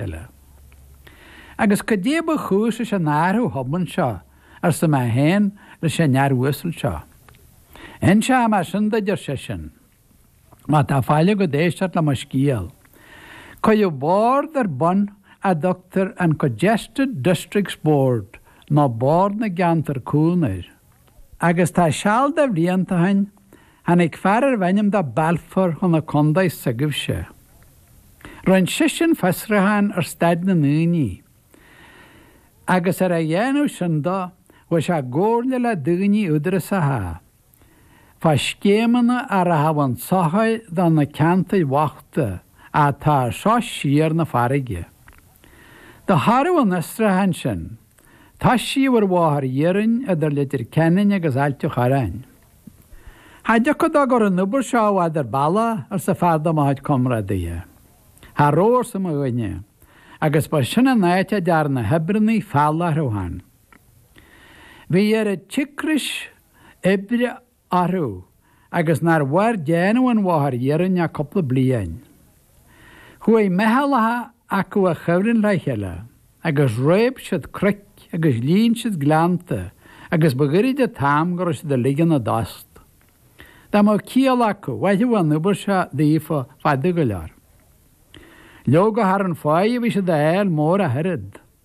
eile. Agus goidé ba chúis leis an athrú thobann seo? arsa mé féin leis an fhear uasal seo. Inseoidh mé sin duid, ar seisean, má tá faill agat éisteacht le mo scéal. Cuireadh bord ar bun a dtugtar an Congested Districts Board nó Bord na gCeantar Cúng air, agus tá seal de bhlianta ó shin, tháinig fear arbh ainm dó Balfour chun an chontae s'agaibhse. Rinn seisean fiosrúchán ar staid na ndaoine agus ar a dhéanamh sin do, bhí sé i gcomhairle le daoine údarasacha fá scéimeanna a rachadh chun sochair do na ceantair bhochta atá seo siar na farraige. De thairbhe an fhiosrúcháin sin Toisíodh ar bhóthar iarainn idir Leitir Ceanainn agus Ailt a Chorráin. Cha dtiocfadh dó go raibh an obair seo i bhfad ar bealach, arsa fear de mo chuid comrádaithe. Cha rabh, arsa mo dhuine, agus ba sin an áit a dtearn na hoibreannaí feall orthu féin. Bhí oiread cíocrais oibre orthu agus nár mhair déanamh an bhóthair iarainn ach cúpla bliain. Chuaigh meithleacha acu i gcuibhreann le chéile agus réab siad cnoic agus líon siad gleannta agus ba ghairid an t-am go raibh siad uilig ina dtost. Dá mbeadh ciall acu, mhairfeadh an obair seo daofa fada go leor. Leoga cha raibh an pháighe a bhí siad a fháil mór ach oiread.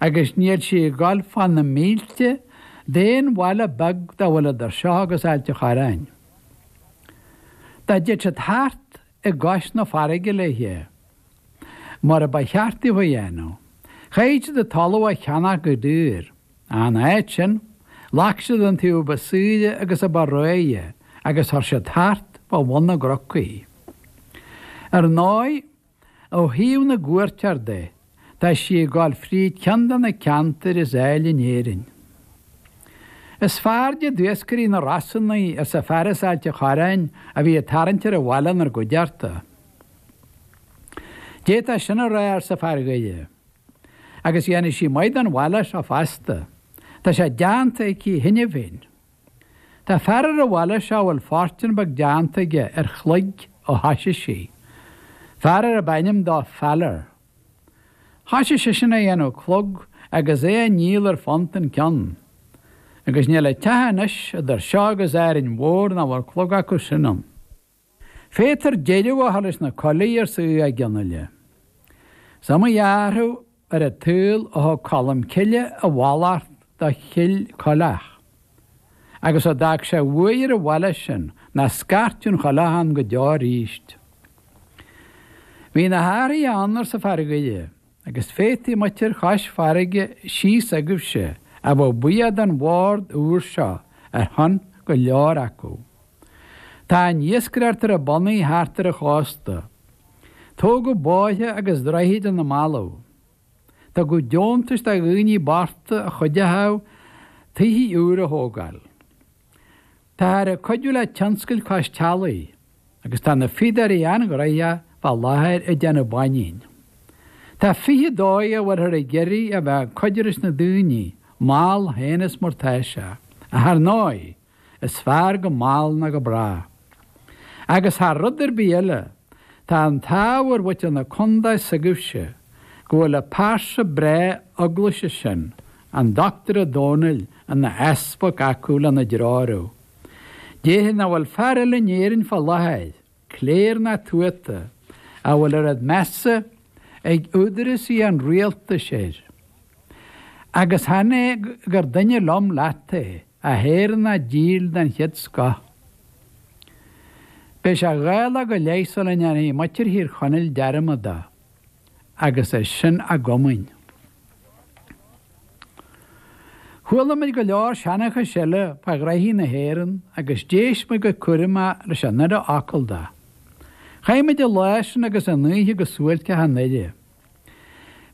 agus níl sí ag dul fá na mílte d'aon bhaile beag dá bhfuil idir seo agus Ailt a' Chorráin. Dá dtéadh siad thart i gcois na farraige léithe, mar a ba cheart daofa a dhéanamh, chaithfeadh siad an talamh a cheannach go daor, in áit sin, ghlac siad an taobh ba saoire agus a ba réidhe agus chuir siad thart fá bhun na gcnoc í. Ar ndóigh, Ó thaobh na gcuairteoir de, tá sí ag dul fríd ceann de na ceantair is áille in Éirinn. Is fearrde d'iascairí na Rosann í, arsa fear as Ailt a' Chorráin a bhí ag tarraingt ar an bhaile inár gcuideachta. D'fhéadfá sin a rá, arsa fear Dhoire. Agus dhéanfaidh sí maith don bhaile seo fosta. Tá sé deánta aici cheana féin. Tá fear ar an bhaile seo a bhfuil fortún beag deánta aige ar chloig ó thoisigh sí, fear arb ainm dó Faller. Thoisigh seisean a dhéanamh clog agus a ndíol ar phunt an ceann. Agus níl aon teach anois idir seo agus Árainn Mhór nach bhfuil clog acu sin ann. Féadtar deireadh a chur leis na coiligh arsa Mac Fhionnaile. Is iomaí athrú ar an tsaol ó thug Colm Cille a mhallacht do Chill Coileach, agus ó d'fhág sé de bhuaidh ar an bhaile sin, nach scairtfeadh aon choileach ann go deo aríst. Bhí na hathruithe ann, arsa fear Dhoire. Agus féadfaidh muintir chois farraige síos agaibhse, a bheith buíoch den bhord úr seo ar shon go leor acu. Tá an iascaireacht ar a bonnaí thart ar an chósta. Tógadh bóithre agus droichid ina mbealaibh. Tugadh deontais do dhaoine bochta a chuideochadh tithe úra a thógáil. Táthar ag cuidiú le tionscail cois teallaigh agus tá na fíodóirí an-ghraitheach fá láthair ag déanamh báinín. Tá fiche dóigh a bhfuilthear ag iarraidh a bheith ag cuidiú leis na daoine, mall féin is mar tá sé, ach ar ndóigh, is fearr go mall ná go bráth. Agus thar rud ar bith eile, tá an t-ádh ar mhuintir na condae s'agaibhse go bhfuil an pearsa breá eaglaise sin An Dochtúir Ó Dónaill ina easpag acu lena dtreorú. Déarfaí nach bhfuil fear eile in Éirinn fá láthair, cléir ná tuata, a bhfuil oiread measa ag údarásaí an rialtais air. Agus chan é gur duine liom leat é, ach Éireannach díl den chéad scoth. Beidh sé dhá lá go leith sula ndéanfaidh muintir Thír Chonaill dearmad de. agus é sin againn. Chuala muid go leor seanchais eile fá ghraithí na hÉireann agus d'éist muid go cúramach leis an uile fhocal de. Chaith muid an lá sin agus an oíche go suáilceach i nDoire.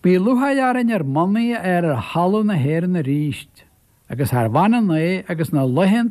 Bhí lúcháir orainn ár mbonnaí a chur ar thalamh na hÉireann aríst, agus charbh ionann é agus na laethanta